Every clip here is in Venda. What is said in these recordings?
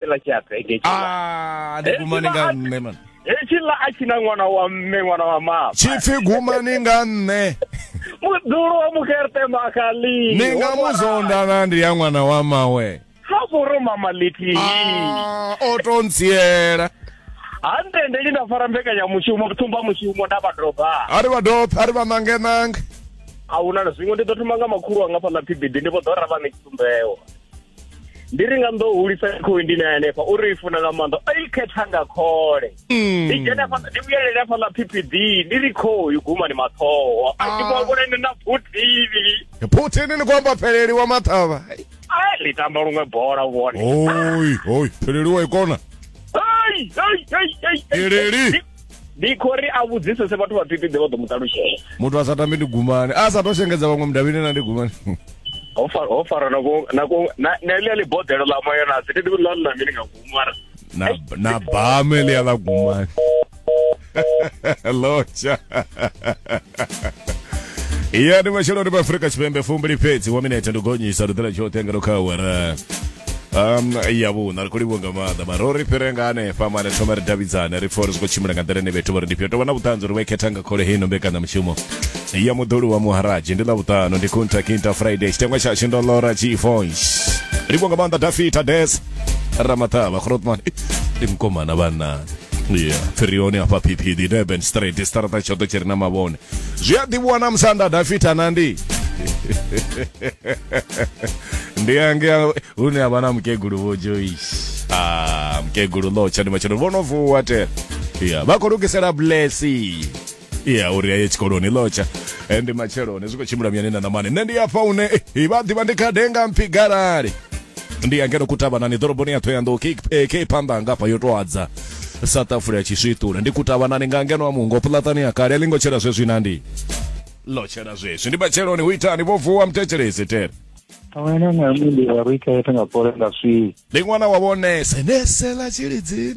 fhela tshi a bege a ah, ndi gumani nga nṋe man hetshi ḽa a tshi na ṅwana wa mme ṅwana wa mama tshipfi gumani nga nṋe muḓulu wa mukherte makali ni nga mu zondana ndi ya ṅwana wa mawe ha vhoro mama lithihi ah, o to ntsiela ha ntendeli nda fara mbekanyamushumo thumba mushumo nda vha doba a ri vha doba a ri vha nange nange a huna na zwiṅwe ndi ḓo thoma nga makhulu anga fhaḽa phibidi ndi vho ḓo ra vha ṋe tshitsumbeo ndi ri nga ndo hulisa khoi ndi na hanefha uri i funa nga maanḓa o i khetha nga khole hmm. ndi dzhena fha ndi vhuyelele fha ḽa PPD ndi ri khoi guma ni mathoho a ndi ah. vhona ni na phuthivi phuthivi ni kwamba pheleli wa mathava ai ḽi tamba luṅwe bola u vhone oi oi pheleli wa ikona ai ai ai ai pheleli ndi khou ri a vhudzisese vhathu vha pipiḓe vha ḓo mu ṱalutshela muthu a sa tambi ndi gumani a sa to shengedza vhaṅwe mudavhini na ndi gumani ho fara ho fara na ko na ko na na ile le bodelo la moyo na sidi ndi la la mini nga gumara na na bame le ya la gumani locha iya ndi masheloni pa afrika tshipembe fumbili fhedzi wa minete ndi gonyisa luḓela tshoṱhe nga lukhawara um ya vhuṋa ri khou livhuwa nga maanḓa mara uri fhire nga hanefha mane thoma ri davhidzane ri pfa uri zwi khou tshimbila nga nḓila ine vhethu vha ri ndi fhio tovha na vhuṱanzi uri vhaikhetha nga khole heino mbekanyamushumo ya muḓoli wa muharaji ndi ḽavhuṱano ndi kunta kinta friday tshitengwa tshashu ndo lora chifonsh livhuwa nga maanḓa dafita des ramaṱavha khrotman ndi mkomana vhanna yeah. phirioni hafha phiphidi durban straight siṱaraṱa tshoṱhe tshi re na mavhone zwi a ḓivhiwa na musanda dafita na ndi ndi ange hune a vha na mukegulu vho joyce ah, mukegulu lotsha ndi matshelo vho no vuwa te yeah. vha khou lugisela blessing ya uri aye tshikoloni lotsha and matshelo hone zwi khou tshimbila muyani na namani nṋe ndi afha une eh, vha ḓivha ndi khadenga mpfi galali ndi ya ngeno kutavhanani ḓoroboni ya thoyandou ke phanḓa anga afha yo to adza south africa ya tshiswiṱula ndi kutavhanani nga ngeno a mungo puḽaṱani ya kale a ḽingo tshela zwezwi na ndi lo tshela zwezwi ndi matsheloni hu itani vho vuwa muthetshelesi tere Awena na mimi ya rika yetu ngapore ngaswi. ndi ṅwana wa vhonese nesela tshilidzini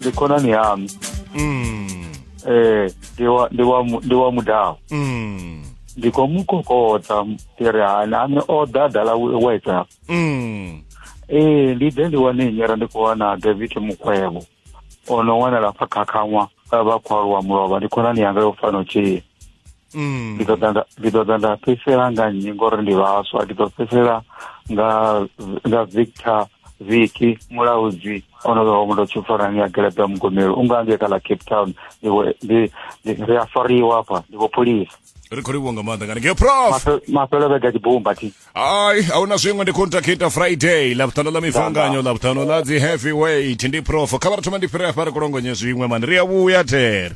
ndi khonani yami Mm. eh ndi wa ndi wa mu- ndi wa mudau Mm. ndi khou mu kokota ndi ri hani a ni o ḓa dala whatsapp Mm. ee ndi ḓe ndi wane nyera ndi khou wana david mukhwevho o no wanala pfa khakhaṅwa vha khou aluwa mulovha ndi khonani yanga yo fano tshee mm. ndi ḓo ḓa nda fhedzisela nga nnyi ngori ndi vhaswa ndi ḓo fhedzisela nga nga victor viki mulaudzi onovewa muthu o tshifarani ya gelepe ya mugomelo u nga ngeka ḽa cape town ri a fariwa afha ndi vho pholisa ri khou livhuwa nga maanḓa ngani ngeo prof mafhelo vhega tshibumba thi ai a huna zwiṅwe ndi contacta friday ḽavhuṱanu ḽa mifanganyo ḽavhuṱanu ḽa dzi heavy weight ndi prof kha vha ri thoma ndi fhire afha ri kulongonye zwiṅwe mani ri a vhuya there